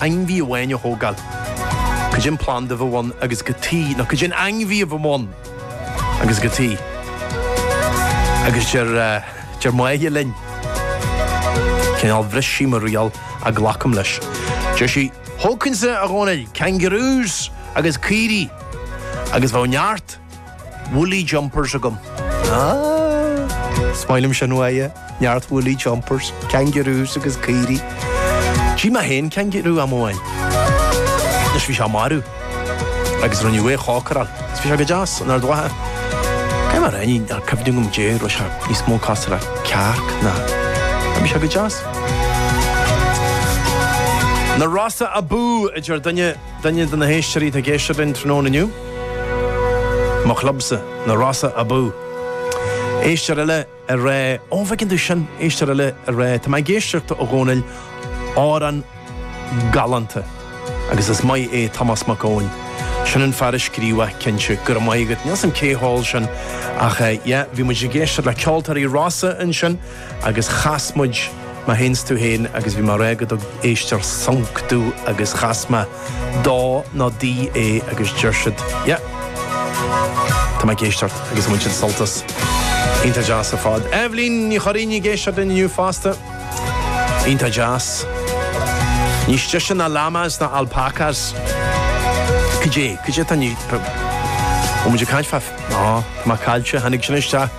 ainmhí amháin a thógáil cad é an planda a bheadh ann agus cad chuige nó cad é an ainmhí a bheadh ann agus cad chuige agus deir deir Máire linn cineál bhris sí mo riail ach glacaim leis. Deir sí, thógfainnse, a Dhónaill, kangaroos agus caoirigh agus bheadh neart woolly jumpers agam. Is maith liom sin uaithi, neart woolly jumpers, kangaroos agus caoirigh. D'ith mé féin kangaroo am amháin. Anois bhí sé marbh agus rinneadh é a chócaráil. Is bhí sé go deas an Ard Mhacha. Cad é mar fhoinn nár cuimhne agam Dé go raibh sé níos mó cosúil le cearc nó ach bhí sé go deas. Na Rossa abú! a deir duine. Duine de na héisteoirí atá ag éisteacht linn tráthnóna inniu, mo chlubsa, na Rossa abú! Éisteoir eile ag rá, ó bhfeiceann tú sin, éisteoir eile ag rá, tá mé ag éisteacht a Dhónaill, amhrán galánta agus is maith é Tomás Mac Eoin, sin an fear a scríobh é cinnte, go raibh maith agat, níl a fhios agam cé a cheol sin ach yeah, bhí muid ag éisteacht le ceoltóirí Rossa ansin. agus chas muid, mar théanns tú féin agus bhí mé ag rá gur do éisteoir sonc do agus chas mé dó nó di é agus deir siad, yeah, tá mé ag éisteacht agus bhain siad sult as, iontach deas ar fad. Eibhlín Ní Churraoin ag éisteacht linn inniu fosta. Iontach deas. Ní sise ná llamas ná alpacas. Cad é? Cad é atá ní, bhfuil muid ag caint fá, á, tá mé caillte, tháinig sin isteach.